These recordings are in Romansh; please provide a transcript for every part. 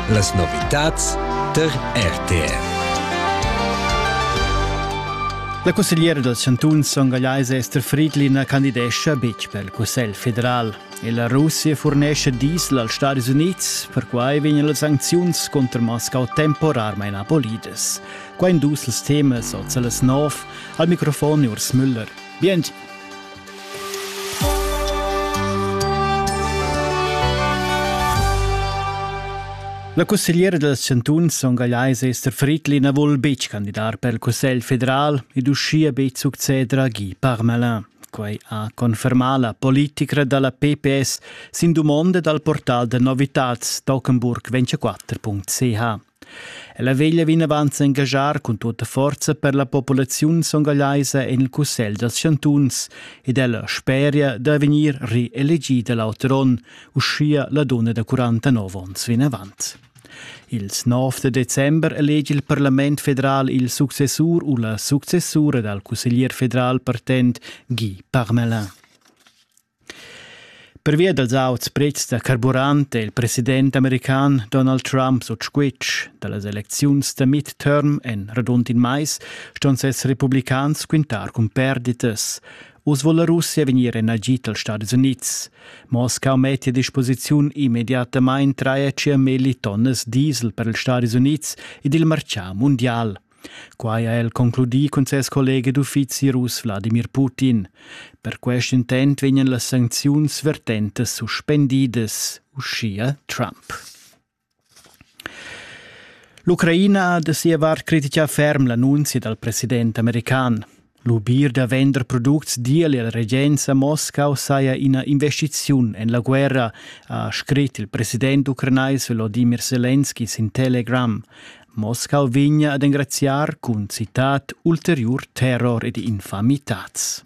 Las novitads tar RTR. La cussegliera dals chantuns songagliais Esther Friedlin candidescha betg per il Cussegl federal. E la Russia furnescha diesel als Stadis Unids, perquai vegnan las sancziuns contra Moscau temporarmain abolidas. Qua in dus els temas oz a las nov. Al microfon Urs Müller. Bien! La cussegliera dals chantuns ongagliais Esther Friedli na vul betg candidar per il Cussegl federal ed uschia betg succeder a Guy Parmelin. Quai ha confermà la politica da la PPS sin dumonda dal portal da novitads Tockenburg 24.ch. Ella veglia vinavant s'engaschar cun tutta forza per la populaziun songallaisa en il Cussegl dals chantuns ed ella speria da vegnir reelegida l'auter onn, uschia la dunna da 49 onns vinavant. Ils 9 da december elegi il Parlament federal il successur u la successura dal cusseglier federal partent Guy Parmelin. Pervia dals auts prezs da carburant è il president american Donald Trump sut squitsch. Da las elecziuns da midterm en radund in mais ston ses republicans quintar cun perditas. Uss vul la Russia vegnir en agid dals Stadis Unids. Mosca mettia a disposiziun immediatamain 3,5 millitonnas diesel per ils Stadis Unids ed il martgà mundial. Quai ha el concludì cun ses collega d'uffizi russ Wladimir Putin. Per quest intent vegnan las sancziuns vertentas suspendidas, uschia Trump. L'Ucraina ha da sia vart critica ferm l'annunzia dal president american. Lubir da vender products digl il regenza Moscau saja ina investiziun en la guerra, ha scrit il president ucranais Volodymyr Selenski sin Telegram. Moscau vegna ad engraziar cun citat ulteriur terror ed infamitads.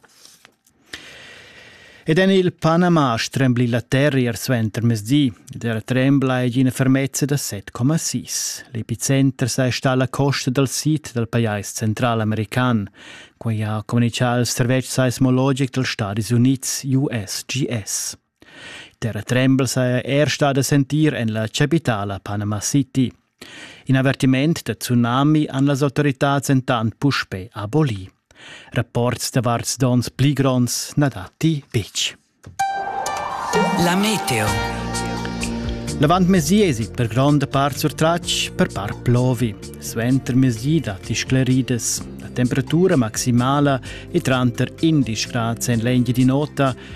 Ed en il Panama strembli la terra ier suenter mezdi ed era trembla ei ina fermezza da 7,6. L'epicenter sa sta alla costa dal sid dal pajais centralamerican, quai ha communicà il servetsch seismologic dals Stadis Unids USGS. Terra trembel saja er stà da sentir en la chapitala Panama City. In avertiment da tsunami han las autoritads entant puspè abolì. Rapports davart donns pli gronds na datti betg. La meteo. L'avant mesi esit per gronda part surtratg per par plovi. Suenter mesi datti scleridas. La temperatura maximala è tranter 11 grad en l'engi di nota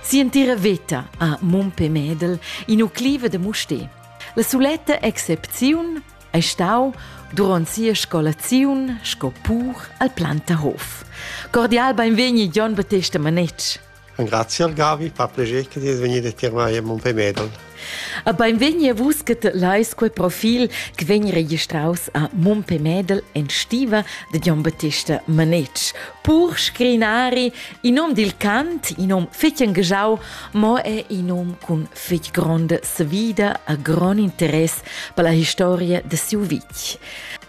Si'entira veta ha Mumpe Medel in ucliva da Musté. La suletta excepziun è stau durant sia scolaziun sco pur al Plantahof. Cordial benvegni Jon Battesta Manetsch. Grazie al Gavi, fa piacere che ti venire a tirmare Mumpe Medel. A beinvegni a vus che lais quei profil che vegn registraus a Mumpe Medel en stiva de Gian Battista Manetsch. Pur scrinari, in nom dil cant, in nom fetg engajau, mo è in nom cun fetg gronda svida a grond interess per la historia de siu vitg.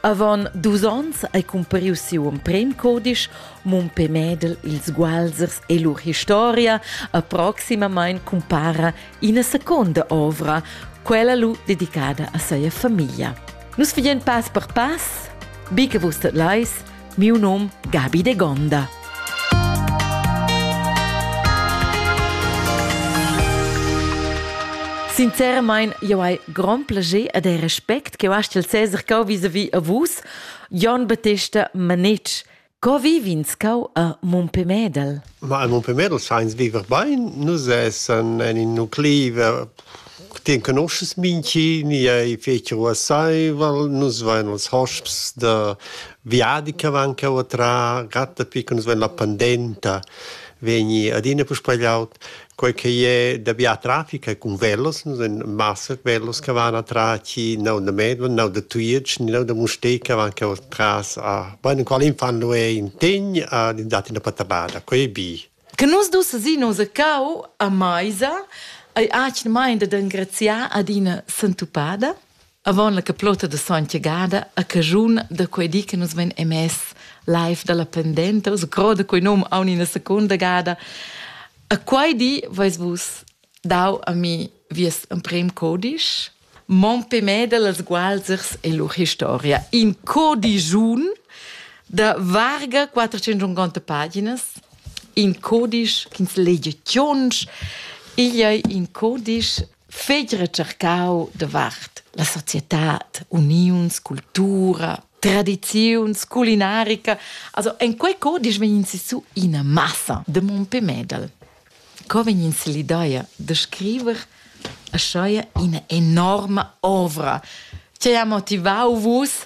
Avon dus onns hai compariu siu emprem codisch Mumpe Medel, ils Gualsers e lur historia, a proximamein compara ina seconda ovra, quella lu dedicada a seia famiglia. Nus fagen pass per pass, bi che vus tot leis, miu num Gabi de Gonda. Sinceramain, eu hai grand plaisir e de respect che eu hast il Cesar cau vis-a-vis a vus, Jon Battista Manich, Co viv'ins cau a Mompemedel? Ma a Mompemedel sainz viver bain, nus essan en in nuclei ti conoschas minchi, ni ei feci ruasseivel, nus vein els hosps da viadi che van cheu a trar, gatta pi che nus vein la pandenta vegni adina puspei laut. Quei che è da bia traffic è cun velos, massa velos che van atras chi neu da Medved, neu da Tujetsch, neu da Mustér che van cheu atras a bene qual in fan lu è in tegn a dati da Patabada, quei è bi. Che nus dus sin nos cau a meisa ei atgna main dad engraziar ad ina sentupada. Avon la caplota de Sontgagada a caschun da quei di che nus vein emess live dalla pendenta, us groda quei num aun ina secunda gada. A quei di veis vus dau a mi vies emprem codisch, Mon pemeda las gualzers e lur historia. In codigiun da varga 450 paginas, in codisch ch'ins legia tschonsch, igl ei in codisch fegl recercau davart la societad, uniuns, cultura, tradiziuns, culinarica. Also en quei co disch vegn su ina massa de Mompé Medal. Co vegn l'idea de scriver a ina enorma ovra che ha motivau vus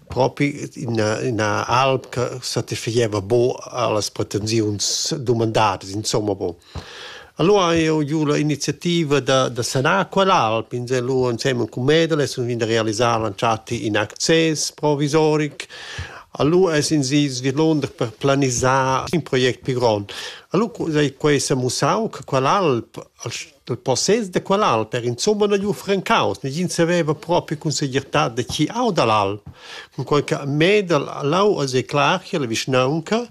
propi ina, ina alp che satisfaceva bo allas pretensiuns dumandadas, insomma bo. Allora ha eu giu la iniziativa da, da sanar quell'alp insellua insemen cun Medeles und da realisar l'entschatta in access provisoric. Allora es in si svilonder per planisar in project più grond. Allora sai quei s'ha mussau che quell'alp Dal possess da quel alter insumma na gnü francaus, negin saveva propi cun segirtà da chi auda l'al, cunquai cha Medel Lau as es clar cha la vischnaunca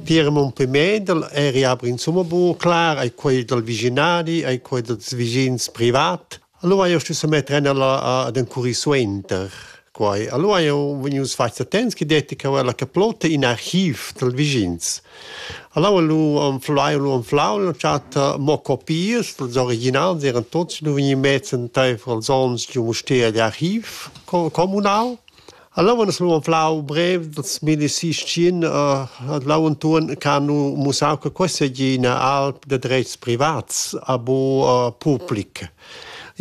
tier Mumpé Medel e riabra insumma buca clar ai quei dal vischinadi, ai quei dals vischins privat. Allora io stu semetter ennala ad encurrir suenter quai. Allora io vegnius fats attents che detti che la caplotta in archiv dal vigins. Allora lu anflau lu anflau l'ho chat mo copias dals originals, eran tots lu vegni mezz entaifer els ons giu Mustér d'archiv comunal. Allora es gnü flau brev dals milli sistin l'antuorn ch'han mussau che questa seigi üna alp da drets privats a bu public.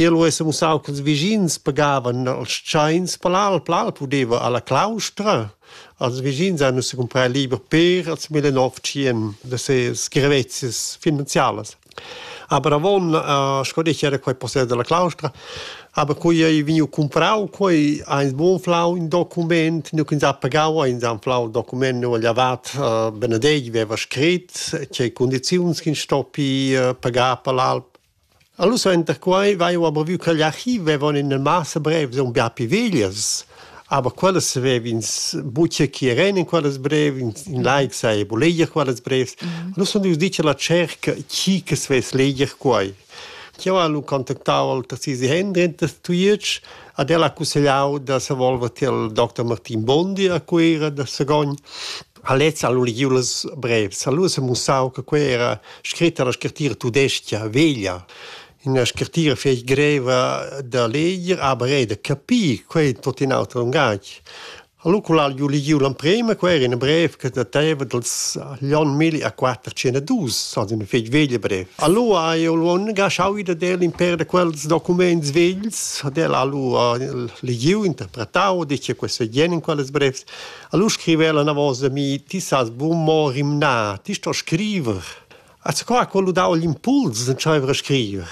I lu es mussau ch'ils vischins pagavan als tschains per l'alp. L'alp udeva alla claustra. Als vischins hanno si comprar liber per als 1900 da ses grevezias finanzialas. Aber avon eh, sco detg era quei possess dalla claustra, aber quei ei vegniu cumprau, quei ha ins buca flau in document, nu ch'ins ha pagau, ins ha flau il document nu agl avat eh, Benedetg veva scrit, tgei condiziuns ch'ins stoppi eh, pagar per l'alp. Allora enter quei vai aber vu che l'archiv vevon in massa brev, son bia piviglias, Aber quellas savev'ins buca chi eran in quellas brev, in, in laic saja bu leger quellas brevs. Mm. Nus sun ius dir che la cerca chi che svess leger quai. Io ha lu contactau al Tassisi Hendren da Tujetsch ad el ha cussegliau da se volver til Dr. Martin Bondi a Cuira da Sagogn. A lez ha lu legiu las brevs, ha lu se mussau che quei era scritta la scrittura tudesca veglia. Ina scrittira fetg greva da leger, aber era da capir, quei è tutto in auter lungatg. Allora, quel ha ju legiu l'emprema, quei era in brev che dateva dals l'onn 1412, also una fetg veglia brev. Allora ha io l'on gasciau da del in per da quels documents vegls, ad el allora legiu, interpretau, dice questo è jen in quelles brevs. Allora scriveva la una volta a mi, ti sas buon mo rimnar, ti sto scriver. Az qua ha quello dau l'impuls d'entscheiver a scriver.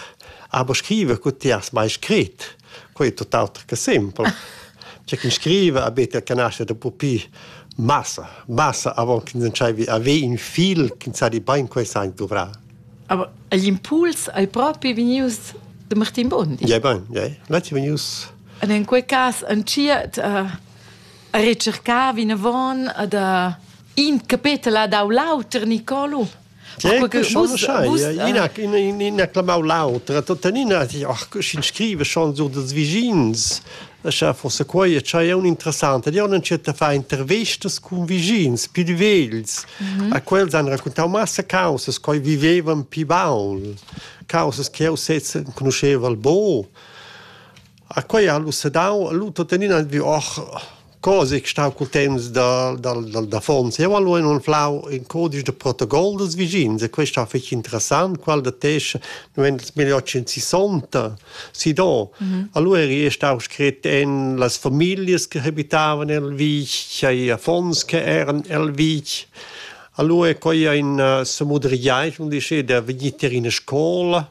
Aber scriver cu ti has mai scrit, quei è tutt'auter che simpel. C'è chi scrive a bete che nasce da pupi massa, massa avant che entscheivi a ve in fil che sa di bain quei sein dovrà. Aber l'impuls hai proprio venius de Martin Bondi. Ja, ben, ja. L'ha venius. Und in quel cas, en cia, uh, a recercar vinavon ad in capetel dau l'auter Nicolo. ina clamau l'autra, tuttenina in scrive chanzur dels vigins, Scha forse quai è è un interessante. Io non c'è fa intervestas con vigins più vegls, mhm. a quels han raccontau massa causes che vivevan più baul, causes che io sezza conosceva al bo. A quei han lu sedau lu tuttenina vi och cose che stau cul temps da dal dal d'affons. Jeu hal lu anflau in codice de protocol dels vischins e quest ha fetg interessant, qual da tesch nu vegn els meglier che in sessanta si do. Allura eri stau scret en las familias che habitavan el vitg, ei affons che eran el vitg. Alura è quai aina semudriaint, mun dice, da vegnir tier ina scola.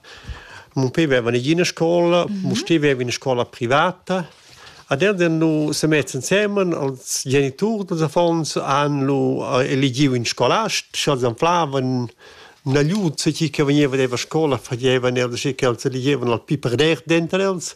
Mun pe veva negia ina scola, mun steva eir in scola privata. Ad ed han nu se mets insemen als geniturs dals affons han lu eligiu in scolast, sch'els anflavan nagliut chi che vegneva deva scola fagevan els che els eligevan al pi per der denter els.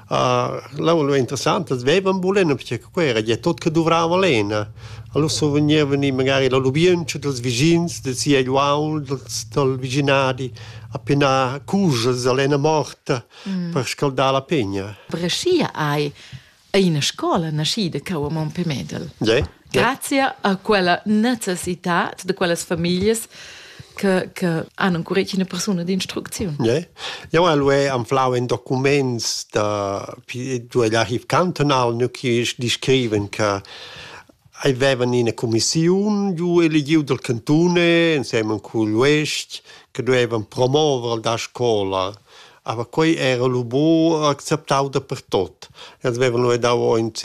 L'aula interessanta as veivan bulena perche che quai era gia tot che duvrava lena. Alura survegnevan i magari la lubientscha dels vischins, da sia uaul, dels dal vischinadi a penar cujas a lena morta per scaldar la pegna. Brescia ei ei ina scola naschida cau a Montpellier. Ge? Grazia a quella necessitad de quellas familias che, che hanno ancora una persona di instruzione. Yeah. Eu al e anflau in documents da du l'archiv cantonal nu chi descriven che avevan ina commissiun giu eligiu del cantone insieme cul uest che doevan promuovere la scola Aber quei era lu buc acceptau dapertut. Els vevan lu dau aunc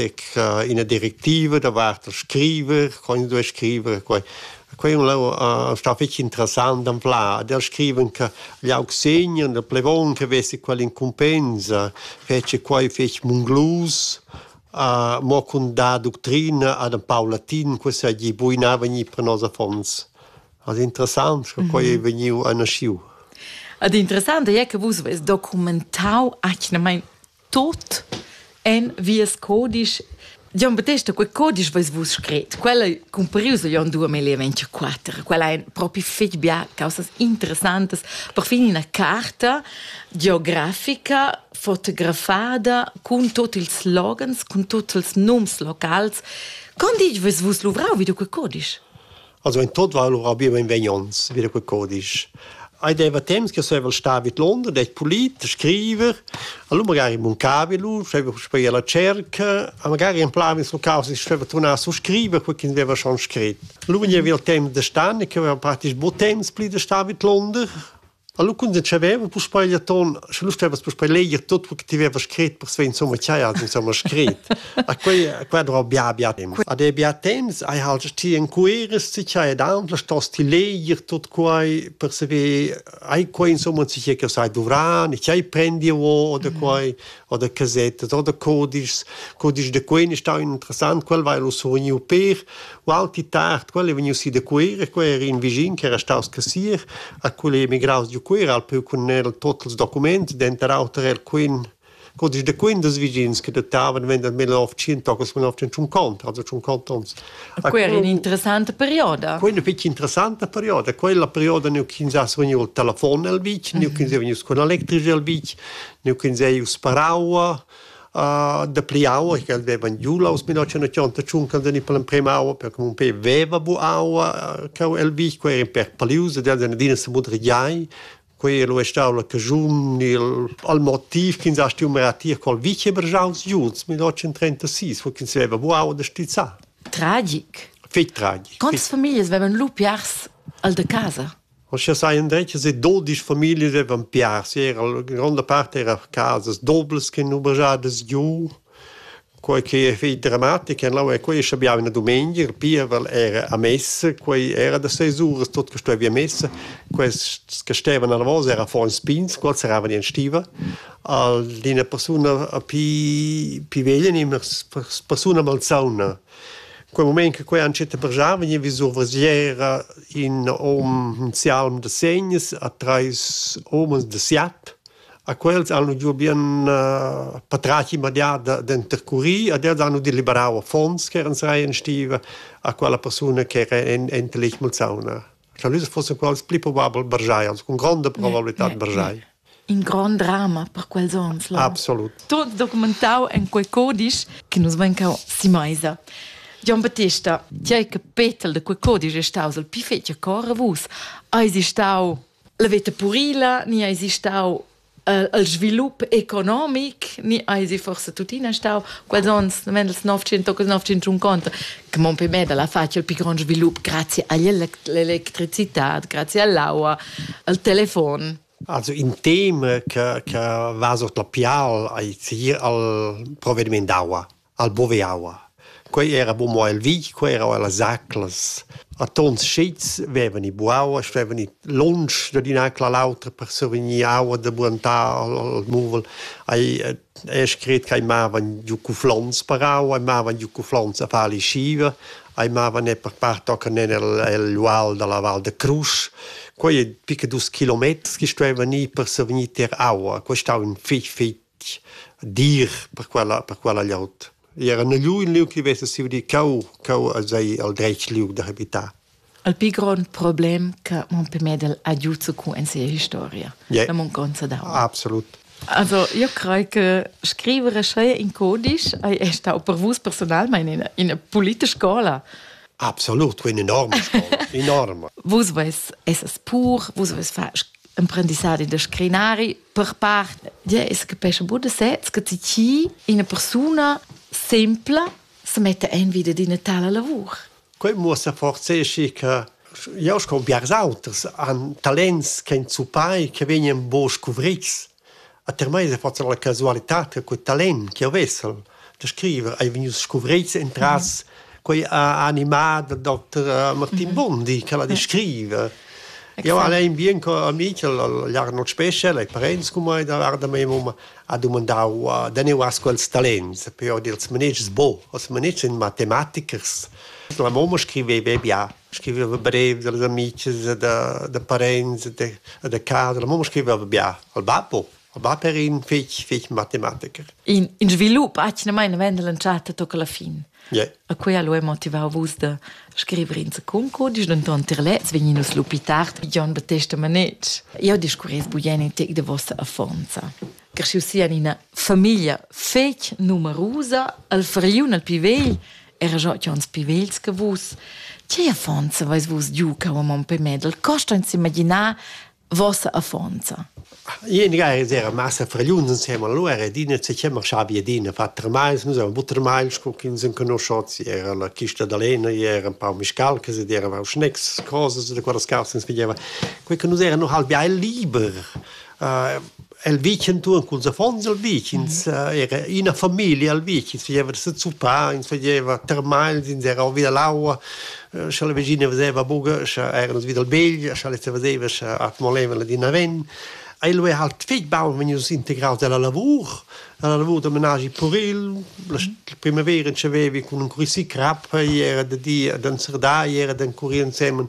ina directiva davart il scriver, co ins duei scriver e quei. Quei è stau fetg interessant d'ampliar. Ad els scriven che gli aug segner, il plevon che vesse quell'incumbensa, fece quei fetg munglus, uh, mo cun dar ductrina ad in pau latin, che seigi buinava gnir per nos affons. Ad interessant sco quei ei vegniu naschiu. Ad interessant ei che vus veis documentau atgnamein tot en vies codisch. Gian Battesta, quei codisch veis vus scret, quel ei cumparius a Jon 2024, quel ein propi fetg bia causas interessantas. Perfin ina carta geografica fotografada cun tutti ils slogans, cun tutti ils nums locals. Con ditg veis vus luvrau vid quei codisch? Also in tot war lura bi mein vegnons, wieder quel codisch. Ei deva temps che sevel sta vid London, det polit, scriver, allora magari muncavi lu, scheva speia la cerca, a magari in plan sul caos, ich scheva tornar su scriver, quel che aveva schon scrit. Lu vegniva il temps de stan, che aveva praktisch bo temps pli de sta vid London, Allora quando c'aveva puspei il ton, sche lu stevas puspei leger tot quel che ti havevas scret per svegl insomma ch'hai has insomma scret. A quei a quei era bia bia temps. Ad ei bia temps hai halt ti encueres ti ch'hai ed aunc stos ti leger tot quei per saver hai quei insomma tgei che sai dovran e ch'hai prendi o oder quei oder casette oder codices codices de quei ne stau interessant quel vai lu surniu per Ualti tard, quel ei vegnius si da Cuera, quei era in vischin che era staus cassier, a quel ei emigraus giu Cuera, al peu cun el tot ils documents, denter auter era quin codice de quin des vischins che dettavan vender 1950, also 50 ons. A quei era in interessante perioda. Quella fece interessante perioda, quella perioda neu ch'ins ha vegniu il telefon el vitg, neu ch'ins è vegnius con electrici el vitg, neu ch'ins ei sparau dapli aua ch'el vevan giu aus 1985 quando ni per l'emprema aua per che mon pe veva bu aua cau el vi quei era per palius ed el adina se mudrigiai quei lo è stau la cajun il al motiv che ins ha stu maratir col vice bergiaus giuns 1936 wo ins veva bu aua da stizza tragic fig tragic Quantas Familien vevan lu piars al de casa? Aschia sajan detg e dudisch famiglias devan piars. Era la gronda part era casas doblas che han oberadas giu. Quei che ei fetg dramatic en lau e quei schabiava una dumengia, il pievel era a messa, quei era da seis uras tot che stuevi a messa. Quels che stevan alla vosa era affons pigns, quels eravan in stiva. Al d'ina persuna a pi pi veglia ni una persuna malsauna. Quei mument che quei entschiet brgiar vegniva vis survesiera in hom in sialm da segns a treis homens da siat. A quels han giu bien patratg immediat d'intercurir ed els han udì liberau affons ch'eran sai en stiva a quella persuna ch'era enta lez malsauna. Scha nus fussen quels pli probabel bargiai, cun gronda probabilità bargiai. In grond drama per quels ons. Là. Absolut. Tot documentau en quei codisch che nus vein cau si meisa. Gian Battista, ti hai che Petel de quei codisch è staus il pi fetg cor a vus. Hai si stau la veta purila, ni hai si stau el svilup economic ni eisi forse tuttina stau quels ons mendels 959 che mon pe Medel ha fatg il più grande svilup grazie all'elettricità grazie all'aua al telefon Also in tema che che va sot la pial ai zier al provvediment d'aua al Boveaua. Quei era bu mo el vitg, quei era ella zaclas. A tons schits vevan i buaua, stevan i lunsch dad in'acla all'autra per survegnir aua da buantar al, al muvel. Ei ei scret ch'ei mavan giu cuflons per aua, ei mavan giu cuflons a far lischiva, ei mavan er per part tochen en el, el ual dalla Val da Crusch. Quei ei pica dus kilometers che stuevan ir per survegnir tier aua. Quei stau in fich, fich dir per quella per quella glieud. I era negli un liug che vesa siu di cau cau als ei al dretg liug da habitar. Il più grande problema che Montpellier ha aiuto con in sia historia, yeah. la mancanza d'aua. Absolut. Also, io credo che scrivere schei in codice è stato per voi personalmente in una politische scuola. Absolut, eine enorme Scuola, enorme. Vus vais essas pur, vus vais far imprendissadi de scrinari, Per part es que pescha bun da sez che ti chi ina persuna sempla se metta in vita d'ina tala lavur. Quei muossa forse che jau sco biars auters han talents che ein zupai che vegnan bo scuvrids. A ter mai se forza la casualità che quel talent che ho vessel da scriver ei vegnius scuvreits entras quei animà da Dr. Martin Bondi che va di scriver. Io al ein bien co amic l'Arnold Special ai parents cum mai da varda mei mum ha dumandau da ne was quels talents per ord ils manegis bo os manegis in matematichers la mamma scriveva bia scriveva brev dals amici da da parents da da casa la mamma scriveva bia al babbo va per in fetg, fetg matematiker. In, in svilup atgnamain mendel entschatta tocca la fin. Yeah. A quella lo è motivau vus da scrivere in concodisch, denton tier lez vegninus lupi tard, John Battesta Manetsch. Io discurres buien in tec de vossa affonza. Cresciu sia ina famiglia fetg numerusa, al fariun al più vegl, era già uns più vegls che vus. Che affonza vais vus giu cau a mon pe medel, costa ins imaginar vossa affonza. Ien ga era massa fragliun insem allora ed ina se chiama Schabi Adina Vatermeis, nus eran Buttermeis, con chi ins conosciots, era la chista da Lena, era un pau miscalcas ed era auch Schnecks, cosas da quella scarsens pigliava. Quei che nus eran noch halb ja liber. Uh, El vitg entuorn culs affons el vitg, ins era ina famiglia al vitg, ins fageva da sezuppar, ins fageva termagls, ins era vi dall'aua, scha la vegina veseva buca, scha eran nus vi dal begl, scha lez veseva, scha accumolevan la dina ven. Ei lu era halt fetg baun vegnius integraus dalla lavur, dalla lavur da menaschi puril. La primavera entschevevi cun encurir crap, ei era da di ad enzerdar, ei era d'encurir ensemen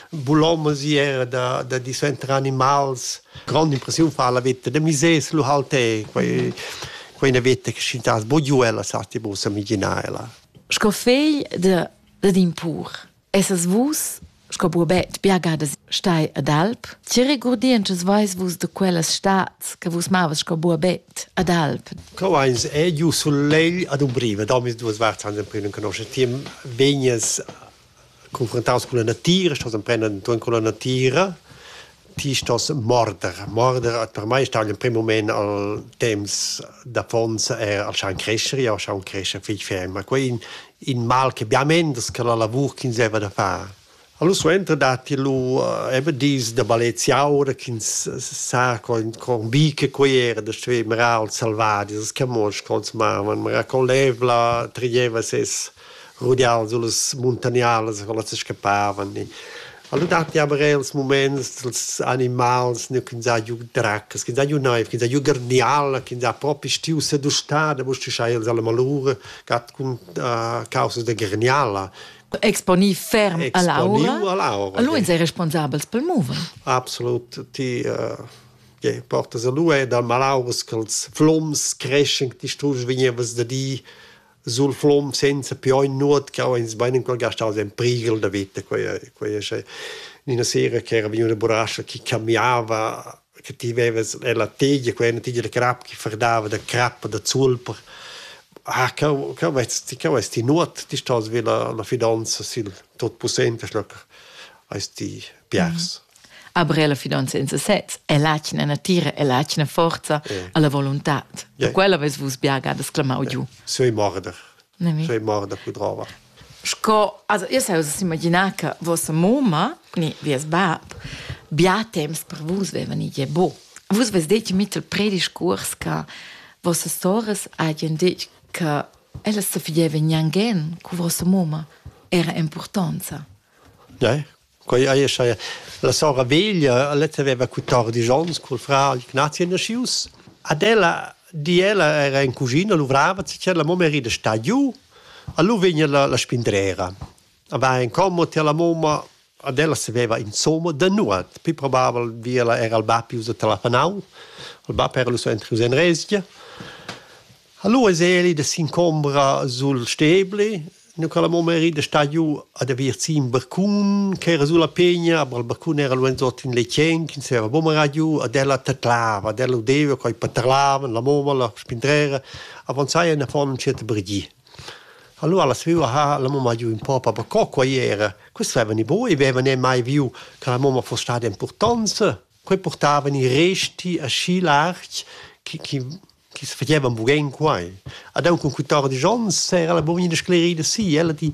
bulomas, ei era da, da di suenter animals. grand'impressiun fa la veta da misers lu halt è quei quei una veta che schintas bogiu ella sa ti bu sa migina ella sco fegl de de d'impur essas vus sco buobet biagadas stai ad alp che regurdientschas veis vus de quellas stads che vus mavas sco buobet ad alp co eins è giu sul legl ad umbriva da mis duas varts an emprim conosce ti vegnes confrontaus cun la natira, stos emprender entuorn con la natira, ti stos morder. Morder per mei stau in prim moment al temps d'affons er al schaun crescher, jau schaun crescher fich ferm, ma quei in, in mal che bia mendes che la lavur ch'ins deva da far. Allora suenter datti lu eh, eben dis da baleziaura ch'ins sa con, con bi che quei era da stuer marar als selvadis, che mos consumavan, ma con l'evla trieva ses rudian sullas muntagnalas co las scappavan e Alura datti aber er ils muments dals animals nu chi za giü dracas, chi za giü naiv, chi za giü garniala, chi za propi stiu sedustà da mustischair els alla malura, gat cun uh, causas da garniala. Exponì ferm a l'aura. a l'aura. Allora sei responsabels pel mover. Absolut, ti uh, yeah, portas a lui dal malauras che els flums creschen, ti stus vegnevas da di sul flom senza più ogni nuot che ho ins bein ancora gastaus en priegel da vita quei quei è una sera che era veniva una burascia che cambiava che ti veves la tegia quella una tegia da crap che ferdava da crap da zulper ah co co vesti co vesti nuot ti stos vi la la fidanza sil tot possente schloc esti piars Aber la finanza in sesez è l'atgna natira e l'atgna forza yeah. alla volontad. Yeah. Quella ves vus biagadas clamau yeah. giu. Sei morder. Sei morder pudrava. Sco, also io sai us imaginar che vostra mamma, ni vies bab, bia temps per vus vevan i bo. Vus ves detg mit il prediscurs che vostra soras hagen detg che ella se fieva gnangen cu vostra mamma era importanza. Ja, Quei ei schai la sora veglia, letta veva quattordici onns col fra Ignazia nascius. Ad ella di ella era in cugina, luvrava, la mamma era sta giù, allora vegna la, la spindrera. Va in commo ti alla mamma, ad ella saveva insomma da nuot, più probabile via era il bab usa telefonau, il bab era lu so entri in resgia. Allora es eli da s'incombra sul stebli, Nu ch'el amo meri da sta giù ad aver gì ün barcun ch'era sulla pegna, ma il barcun era luanzot in letgen chi ns'era buca marà giù, ad ella tadlava, ad ella udeva co i paterlavan, la mumma, la spindrera, avanzaia in affon ün tschert brgì. Allura la svüa ha la mumma giü ün po per co quai era. Questi avevan i bu e avevan eir mai viu che la mumma foss stada importanza. Quei purtavan i resti aschi larg chi chi chi's fagevan bugün quai. Ad aunc cun quatordisch ons era la bugina sclerida si. Ella di,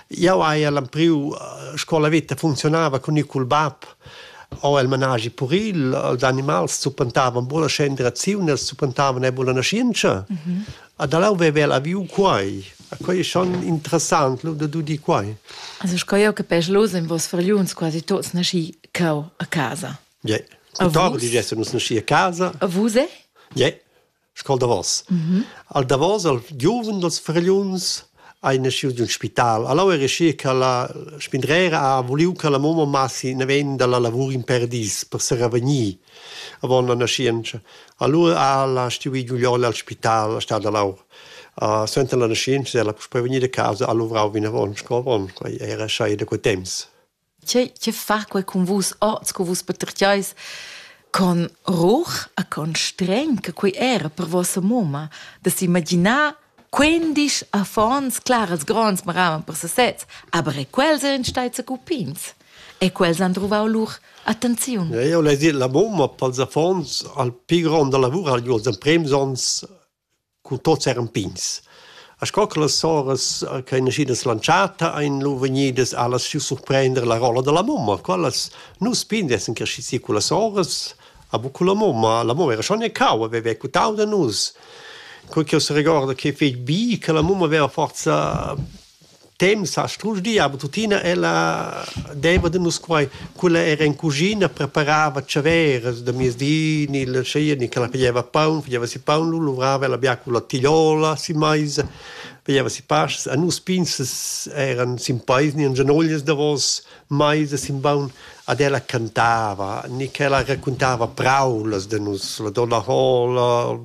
jau haja l'empriu scola veta funzionava cun ir cul bab o el managi puril, els animals zuppentavan bulla scenderaziun, els zuppentavan e bulla naschientscha. Mm -hmm. Ad alau veva la viu quai. Quai è schon interessant, lo da di quai. Also sco jau capesch los en vos fargliuns quasi tots nasci cau a casa. Yeah. Tuttora di gest nus nasci a casa. A vus è? Yeah. Scol davos. Mm -hmm. Al davos al giuven dals fragliuns hai nasciu di un spital. Allora era schi che la spindrera ha voliu che la mamma massi ne ven dalla lavur in perdis per se revenir. Avon la nascienza. Allora ha la stuì Giulione al spital, a stata laur. Uh, Senza la nascienza ella per prevenire a casa ha luvrau vinavon, sco avon, quei era sai da quei temps. che, che fa quei cun vus oz, cu vus patertgeis con ruch e con streng che quei era per vossa moma, da s'imaginar quindisch affons claras gronds maravan per sesez, aber e quels ein stai cupins. E quels han truvau lur attenziun. Ja, io l'hai dit, la moma pels affons al pi grond da lavur ha gli els emprems ons Cun tots eran pigns. E sco che las soras che ein naschidas lantschata ein lu vegnidas allas giu surprender la rolla dalla mumma. Quellas nus pigns essan cresci si cun las soras, a bu cun la mumma. La mumma era schon e cau, haveva quitau da nus. Cur ch'jeu seregorda che fetg bi che la mumma veva forsa temps ha strusch di, aber tuttina ella deva de nus quai, quella era in cuschina, preparava ciaveras da miezdi, ni la scia, ni che la pigliava paun, pigliava si paun, lu luvrava ella bia con la tigliola si meisa, pigliava si pastas, a nus pinzas eran sin peis ni en genoglias davos meisa sin baun, ad ella cantava, ni che ella raccontava praulas de nus, la donna Hola,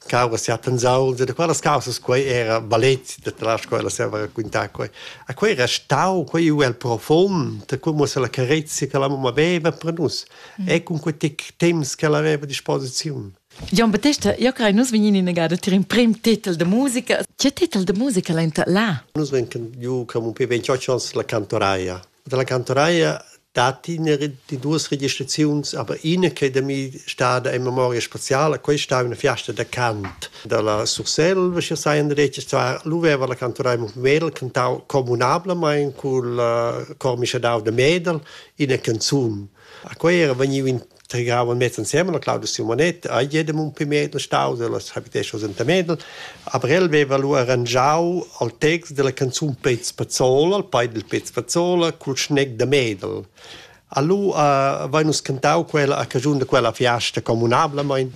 causa sia pensau de quellas causas quei era balet de tras quella se va raccontar quei a quei restau quei u el profond come se la carezia che la mamma aveva per nus mm. e con quei tic temps che la aveva disposizione Gian Battesta, io crei nus vegnin in agada tir in prim titel de musica. Che titel de musica l'enta là? Nus venken ju come un pe 28 ans la cantoraia. dalla cantonaia datti ina di duas registraziuns, aber ina che è da mi stada in memoria spaziale, questa è una fiesta da cant dalla Surselva, ci sai in detg, zwar l'uveva la cantonaia Mumel cantau comunablamain col uh, cor mischadau da Medel ina canzun. A quei era vegniu in tregavan mez ensemen, la Claudia Simonet, a jedem un pi medel stau dellas habitesas enta Medel, aber el veva lu arrangiau al text della canzun Pez Pazzola, al pai del Pez Pazzola, cul schneg da Medel. Allu uh, vai nus cantau quella a cagiun de quella fiasta comunablamein.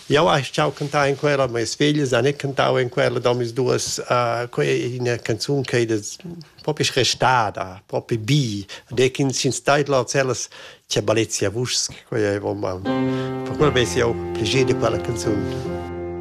Jau hai ciao cantau in quella, ma es figlia, san e cantau in quella da mis duas, uh, quei ina canzun che das propi restada, propi bi, de ch'ins ins stait là cellas che balezia vuschs, quei ei vom. Per quel vesi jau pleiger de quella canzun.